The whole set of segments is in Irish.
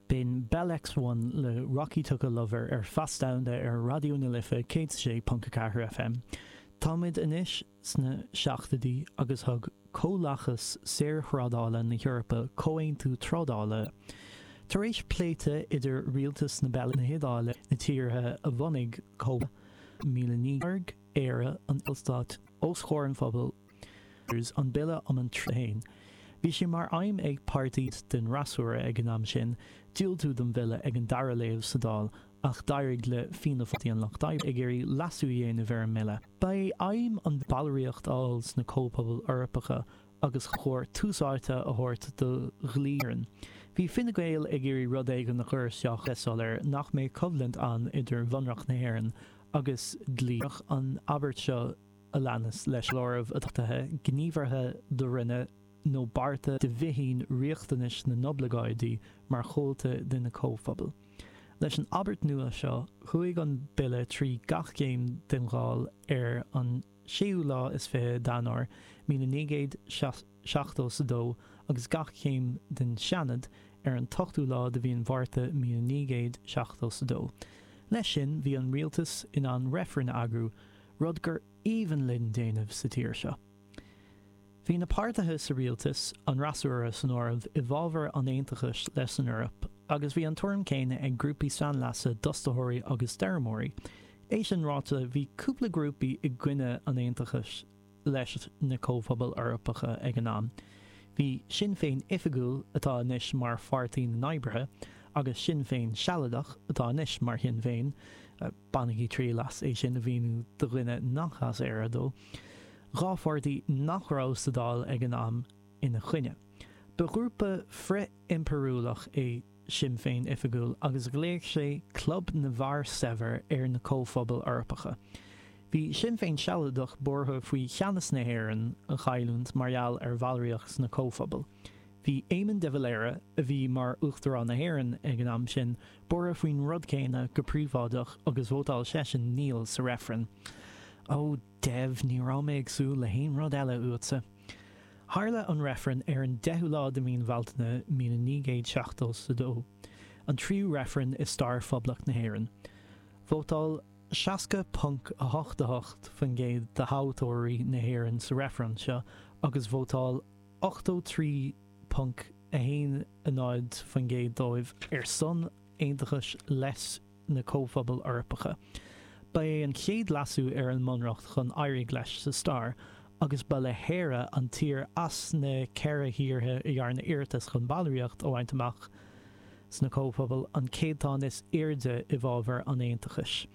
B'in Bell X1 le Rocky Took a Lover ar Phas Domhanda ar Raidió na Life 106.4 FM. Táimid anois sna seachtoidí agus thug Comhlachas Saorthrádála na hEorpa comhaontú trádála, tar éis pléite idir rialtas na Beilge, na hIodáile, na tíortha a bhunaigh Comhlathas 1900, Éire, an Ballstáit, os chomhair an phobail. an Bille um an Tríú. Bhí sé mar aidhm ag páirtí den fhreasúra ag an am sin diúltú don bhille ag an dara léamh sa Dáil ach d'éirigh le Fianna Fáil, Páirtí an Lucht Oibre ag iarraidh leasú a dhéanamh ar an mbille. Ba é aidhm an bhallraíocht a fháil sna Comhphobail Eorpacha agus ba chóir tús áite a thabhairt do dhlí na hÉireann. Bhí Fine Gael ag iarraidh rud éigin a chur isteach le soiléir nach mbeadh coimhlint ann idir Bhunreacht na hÉireann agus dlí an Aontais. Bhíodh an abairt seo, a leanas leis an áireamh a d'achtaigh, gníomhartha do rinne nó bearta de bhíthin riachtanais na n-oibleagáidí mar chomhalta de na Comhphobail. Leis an abairt nua seo, chuaigh an Bille trí gach céim den Dháil ar an séú lá is fiche d'Eanáir, míle naoi gcéad seachtó 's a dó, agus gach céim den Seanad ar an t-ochtú lá de mhí an Mhárta, míle naoi gcéad seachtó 's a dó. Leis sin, bhí an Rialtas in ann reifreann a eagrú, rud gur aoibhinn linn déanamh sa tír seo. Bhí na páirtithe sa rialtas, an fhreasúra san áireamh, i bhfabhar an aontachais leis an Eoraip, agus bhí an tuairim céanna ag grúpaí sainleasa d'fhostaitheoirí agus d'fheirmeoirí. É sin ráite, bhí cúpla grúpaí i gcoinne an aontachais leis na Comhphobail Eorpacha ag an am. Bhí Sinn Féin Oifigiúil, atá anois mar Pháirtí na nOibrithe, agus Sinn Féin Sealadach, atá anois mar Shinn Féin, Bainigí triail as é sin a mhíniú do dhuine nach as Éire dó, dhá pháirtí nach raibh sa Dáil ag an am ina choinne. Ba ghrúpa frith-impiriúlach é Sinn Féin Oifigiúil agus ghlaoigh sé 'Club na bhFear Saibhir' ar na Comhphobail Eorpacha. Bhí Sinn Féin Sealadach buartha faoi cheannas na hÉireann a chailliúint mar gheall ar bhallraíocht sna Comhphobail. Bhí Éamon de Valera, a bhí mar Uachtarán na hÉireann ag an am sin, buartha faoin rud céanna go príobháideach agus vótáil seisean 'Níl' sa reifreann. Ó, Dev, ní raibh mé ag súil le haon rud eile uaitse. Tharla an reifreann ar an deichiú lá de mhí an Bhealtaine míle naoi gcéad seachtó 's a dó, an tríú reifreann i stair Phoblacht na hÉireann. Vótáil seasca ponc a hocht a hocht faoin gcéad de thoghthóirí na hÉireann sa reifreann seo agus vótáil. 83.10% dóibh ar son aontachais leis na Comhphobail Eorpacha. Ba é an chéad leasú ar an mbunreacht chun éirigh leis sa stair, agus ba í Éire an tír as na ceithre thíortha a dhearna iarratas chun ballraíocht a bhaint amach sna Comhphobail an céatadán is airde i bhfabhar an aontachais,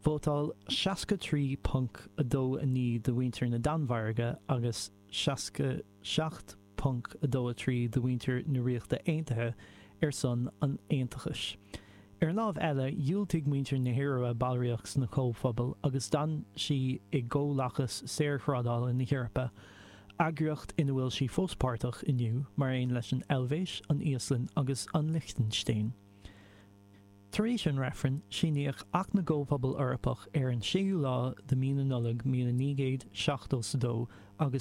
vótáil 63.29 de mhuintir na Danmhairge agus. 67.23 de mhuintir na Ríochta Aontaithe ar son an aontachais. Ar an láimh eile, dhiúltaigh muintir na hIorua ballraíocht sna Comhphobail agus d'fhan sí i gComhlachas Saorthrádála na hEorpa, eagraíocht ina bhfuil sí fós páirteach inniu, mar aon leis an Eilvéis, an Íoslainn agus an Lichtinstéin. Tar éis an reifrinn, síníodh Acht na gComhphobal Eorpach ar an séú lá de Mhí na Nollag míle naoi gcéad seachtó 's a dó agus,